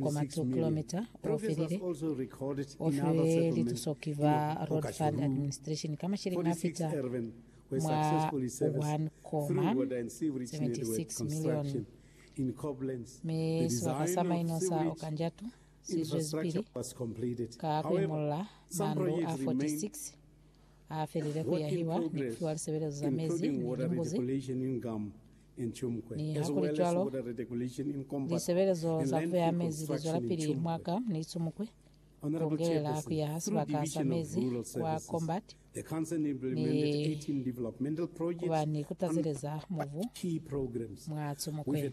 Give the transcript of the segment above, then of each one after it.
kwa Matsu Kilometre o felile, o filwe lituso ki ba Road Fund Administration ka masheleni a fita mwa 1.76 milioni, mi sibaka sa maino sa Okanjatu si zwezipili ka ku imolola mandu a 46. Ha felile ku yahiwa ni ku fiwa lisebelezo za mezi ni limbuzi, nihakulicwalo, lisebelezo za ku beha mezi li zwelapili mwa ka ni Tsumukwe, ku kongelela ku yaha sibaka sa mezi kwa Combat ni ku ba ni ku tazeleza mubu mwa Tsumukwe.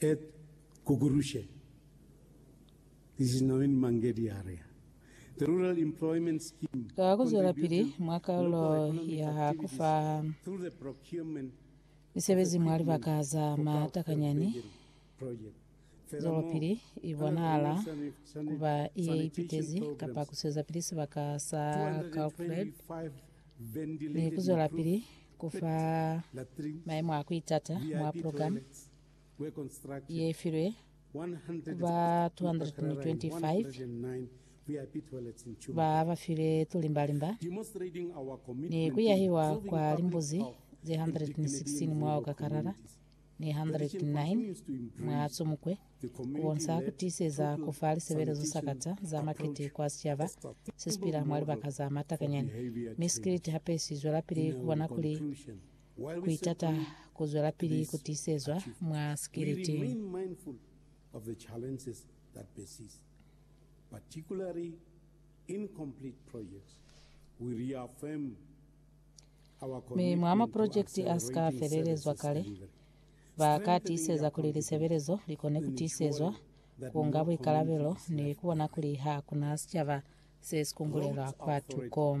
Et kukurushe This is Naveen Mangedi Arya. The Rural Employment Scheme Ka ku zwelapili mwa kalulo ya ku fa misebezi mwa libaka za matakanyani, zwelopili i bonahala ku ba ye ipitezi kapa ku swezapili sibaka sa Kalkfred ni ku zwelapili ku fa maemo a ku itata mwa pulogalamu ye filwe ku ba 225 ba ba file tulimbalimba ni ku yahiwa kwa limbuzi ze 116 mwa Okakarara ni 109 mwa Tsumukwe ku bonsa ku tiiseza ku fa lisebelezo sa kata za makete kwa sicaba se si pila mwa libaka za matakanyani mi sikiliti hape si zwelapili ku bona kuli Kuitata kuzwelapili kutisezwa mwa sikiliti. Mi mwa mapulojekiti asika felelezwa kale, ba ka tiiseza kuli lisebelezo likone kutisezwa, kuunga buikalabelo, ni kubona kuli hakuna sicaba sesikungulelwa kwatuko.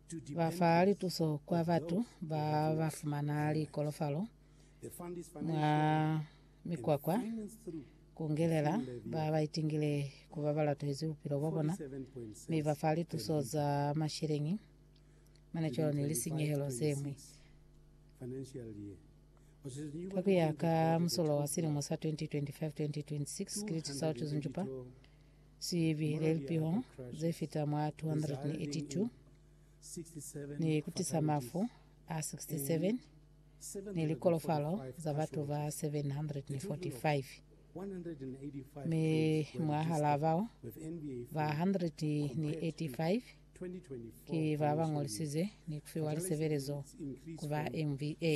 Ba fa lituso kwa batu ba ba fumana likolofalo mwa mikwakwa, ku ngelela ba ba itingile ku ba ba latohezi bupilo bwa bona, mi ba fa lituso za masheleñi, mane cwalo ni lisinyehelo ze ñwi. Ka ku ya ka musolwa wa silimo sa 2025-2026, Great South Zunjupa, Sibi le lipiho ze fita mwa 282 ni ku tisa mafu a 67 ni likolofalo za batu ba 745, mi mwahalaa bao, ba 185 ki ba ba ngolisize ni ku fiwa lisebelezo ku ba MVA.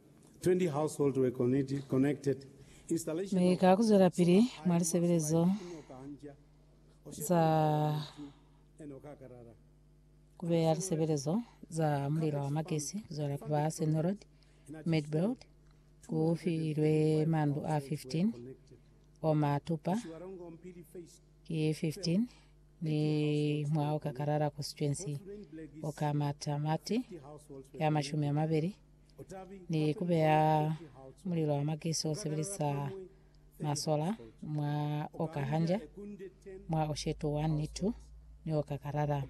Mi ka kuzwelapili mwa lisebelezo za kubeya lisebelezo za mulilo wa magesi kuzwela ku ba Senior Road, Midbelt, ku filwe mandu a 15 o ma tupa, ki 15 ni mwa Okakarara Constituency, oka matamati ya mashumi amabeli, ni ku beya mulilo wa makiso u sebelisa masola mwa oka hanja mwa oshetu wa nitu ni oka karara.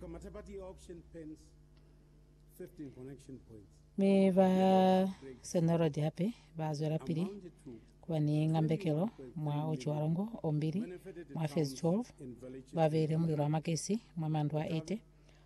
Mi ba senorodi hape ba zwela pili kuba ni ngambekelo mwa uci wa longo ombili mwa fezi 12 ba beile mulilo wa makisi mwa mandu a 80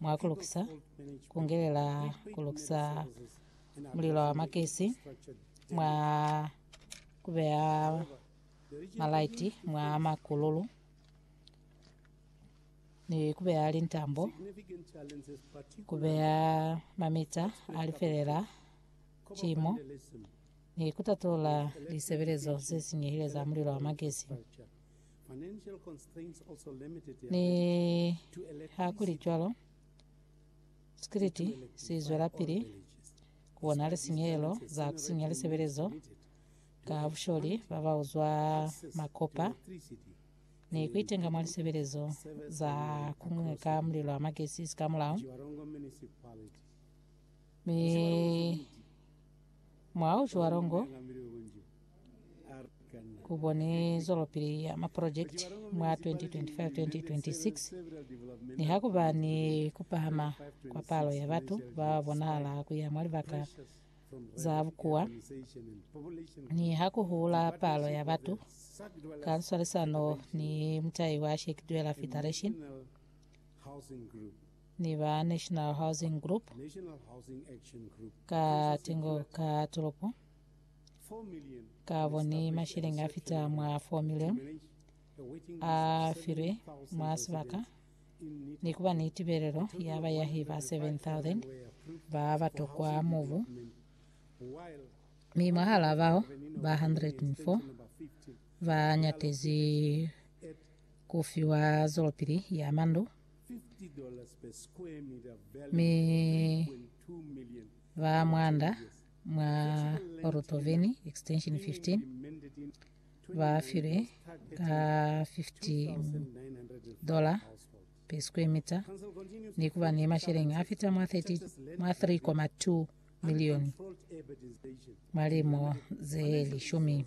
mwa ku lukisa, ku ngelela ku lukisa mulilo wa makesi, mwa ku beya malaiti mwa makululu, ni ku beya lintambo, ku beya mamita a lifelela cimo, ni ku tatula lisebelezo ze sinyehile za mulilo wa makesi. Ni hakulicwalo, sikiliti si zwelapili ku bona lisinyehelo za ku sinya lisebelezo ka busholi ba ba uzwa makopa ni ku itenga mwa lisebelezo za ku ñwi ka mulilo wa magesi sikamulaho mi Mwa uci wa longo, ku boni zwelopili ya maprojekiti mwa 2025-2026 niha ku ba ni ku pahama kwa palo ya batu ba bonahala ku ya mwa libaka za bukuwa ni ha ku hula palo ya batu ka nswalisano ni mutai wa Sheikh Dweller Federation. ni ba National Housing Group ka tingo ka tolopo kabo ni mashilingi a fita mwa 4 million a filwe mwa sibaka ni kuba ni tibelelo ya bayahi ba 7,000 ba ba tokwa mobu mi mwahala bao ba 104 ba nyatezi ku fiwa zolopili ya mandu mi ba mwanda mwa Orotoveni Extension 15 ba filwe ka $50 per square meter ni ku ba ni masheleng a fita mwa 3.2 milioni mwa limo ze lishumi.